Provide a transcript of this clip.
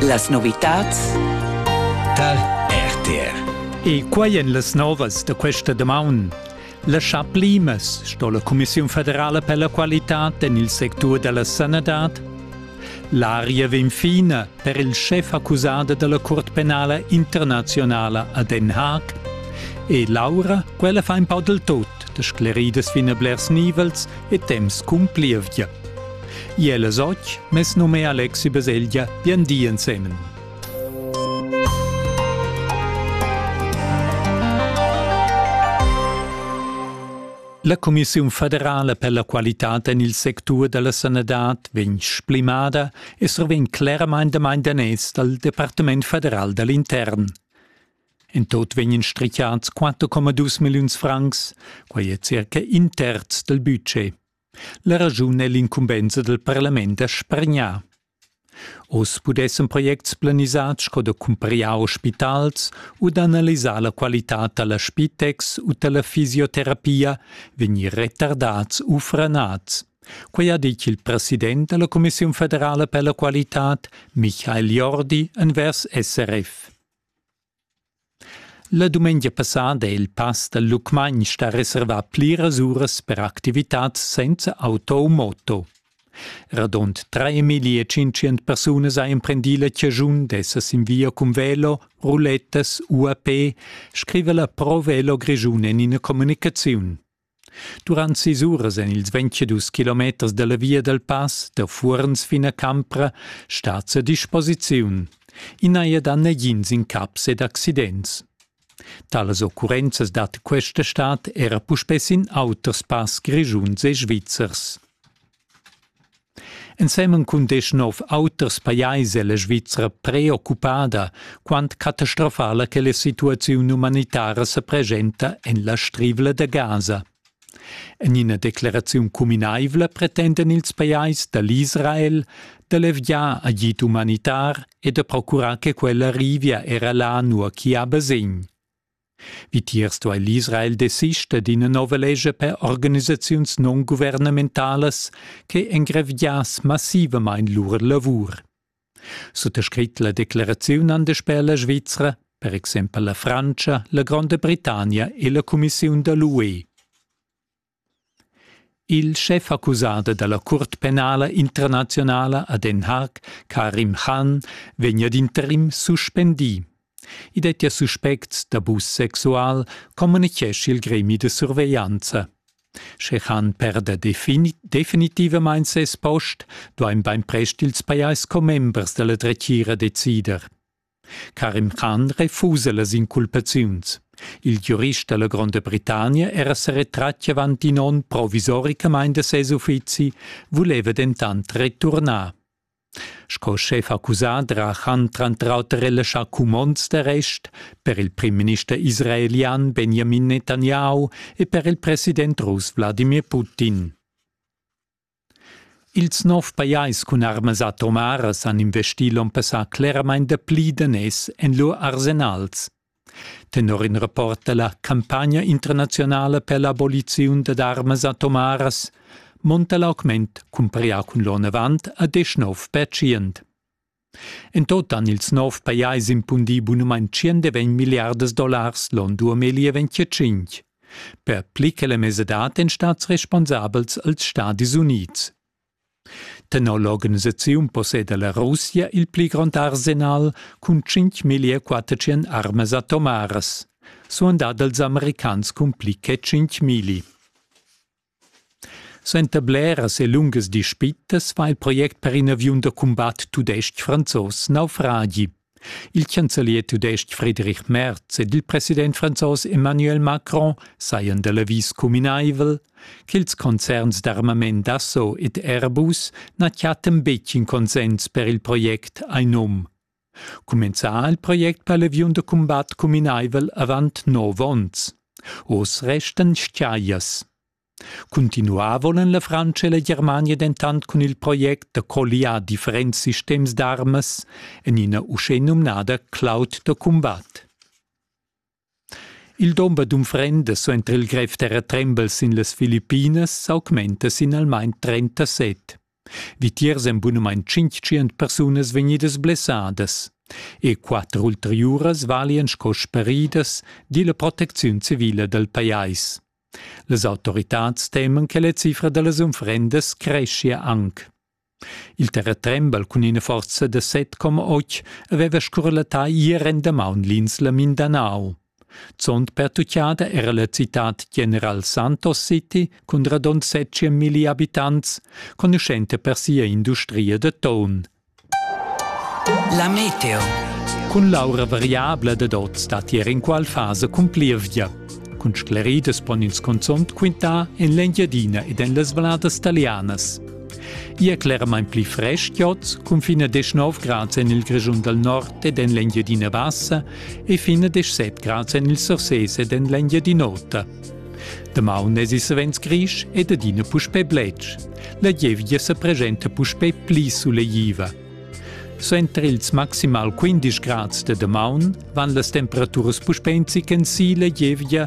Las novitats tal RTR. E quai en las novas da questa damaun. La Chaplimas sto la Commissiun federala per la qualità en il sectur da la sanadad. L'aria vegn fina per il schef accusada dalla Curt penala internazionala a Den Haag. E Laura, quella fa in po del tot. de scleridas fin a blers nivels e temps cumplievgia. Iel es och, mes nome è Alexi Baselgia, bien di ensemen. La Commissiun federala per la qualità en il sectur della sanadad vegn splimada e survegn claramain da danes dal Departement federal dall'intern. In tot vegnan strichats 4,2 milliuns francs, quai è circa in terz dal budget. La raschun è l'incumbensa dal parlament da spargnar. Oz pudessan projects planisads sco da cumprar ospitals u d'analisar la qualitad da la spitex u da la fisioterapia vegnir retardads u franads. Quai ha ditg il president da la Commissiun federala per la qualitad, Michael Jordi, envers SRF. La dumengia passada è il pass dal Lucmagn stà reservà pliras uras per activitads senza auto u moto. Radund 3500 persunas ha emprendì la chaschun d'esser sin via cun velo, rulettas u a pe, scriva la Pro Velo Grischun en ina communicaziun. Durant sis uras en ils ventschedus kilometers da la via dal pass da Fuorns fin a Campra stat a disposiziun. I n'haja dà nagins incaps ed accidents. Talas occurrenzas dat questa stad era puspè sin auters pass grischuns e svizzers. Ensemen cun deschnov auters pajais è la Svizra preoccupada, quant catastrofala che la situaziun umanitara sa preschenta en la Strivla da Gaza. En ina decleraziun cuminaivla pretendan ils pajais da l'Israel da leviar agid umanitar e da procurar che quella arrivia era là nua ch'i ha basegn. Vitiers duai l'Israel desister d'ina nova lescha per organisaziuns non guvernamentalas che engraviass massivamain lur lavur. Suttascrit la declaraziun an daspè la Svizra, per exempel la Frantscha, la Gronda Britannia e la Cumissiun da l'UE. Il schefaccusader dalla Cuort penala internazionala a Den Haag, Karim Khan, vegn ad interim suspendì. I dettia suspects d'abus sexual, communichescha il gremi da surveglianza. Sche Khan perda definitivamain ses post, duain bainprest ils pajais commembers da la dretgira decider. Karim Khan refusa las inculpaziuns. Il giurist dalla Gronda Britannia era seretratti avanti in onn provisoricamain da ses uffizi, vuleva dentant returnar. Sco schef accusà ha Khan tranter auter relaschà cumonds d'arrest per il primminister israelian Benjamin Netanyahu e per il president russ Wladimir Putin. Ils nov pajais cun armas atomaras han investì l'onn passà cleramain dapli daners en lur arsenals. Tenor in rapport da la campagna internazionala per l'aboliziun dad armas atomaras monta l'augment cumparà cun l'onn avant a 19%. En tot han ils nov pajais impundì bunumain tschient e ventg milliardas dollars l'on duo meglier venticinc. Per pli che la mesadad èn stads responsabels als Stadis Unids. Tenor l'organisaziun posseda la Russia il pli grond arsenal cun 5.400 armas atomaras, suandà dals americans cun pli che 5.000. Suenter bleras e lungas dispitas fa il project per in aviun da cumbat tudestg-franzos naufragi. Il chancelier tudestg Friedrich Merz ed il president franzos Emmanuel Macron sajan da l'avis cuminaivel ch'ils concerns d'armament Dassault ed Airbus na chattan betg in consens per il project a num. Cumenzà ha il project per l'aviun da cumbat cuminaivel avant nov onns. Oz restan stiaias. Cuntinuà volan la Frantscha e la Germania dentant cun il project da colliar differents sistems d'armas en ina uschè numnada cloud da cumbat. Il dumber d'unfrendas suenter il grev terratrembel sin las Filippinas s'augmenta sin almain trentaset. Vitiers èn bunamain tschintschient persunas vegnidas blessadas. E quatter ulteriuras valian sco speridas, di la protecziun civila dal pajais. Las autoritads teman che la cifra da las unfrendas creschia anc. Il terratrembel cun ina forza da set coma otg haveva scurlattà ier endamaun l'insla Mindanao. Zond pertuccada era la citad General Santos City cun radund setje milli abitants, conuschenta per sia industria da ton. La meteo. Cun l'aura variabla dad oz dat ier inqual fasa cun plievgia. Cun scleridas pon ins cunzont quintar en l'Engiadina ed en las valladas talianas. Ia è cleramain pli frestgiots cun fin a 19 grads en il Grischun dal nord ed en l'Engiadina Bassa e fin a 17 grads en il Surses ed en l'Engiadin'Ota. Damaun èsi savens grisch ed adina puspè bletsch. La gievgia sa presenta puspè pli sulegtiva. Suenter ils maximal 15 grads de damaun van las temperaturas puspè in zichen si la gievgia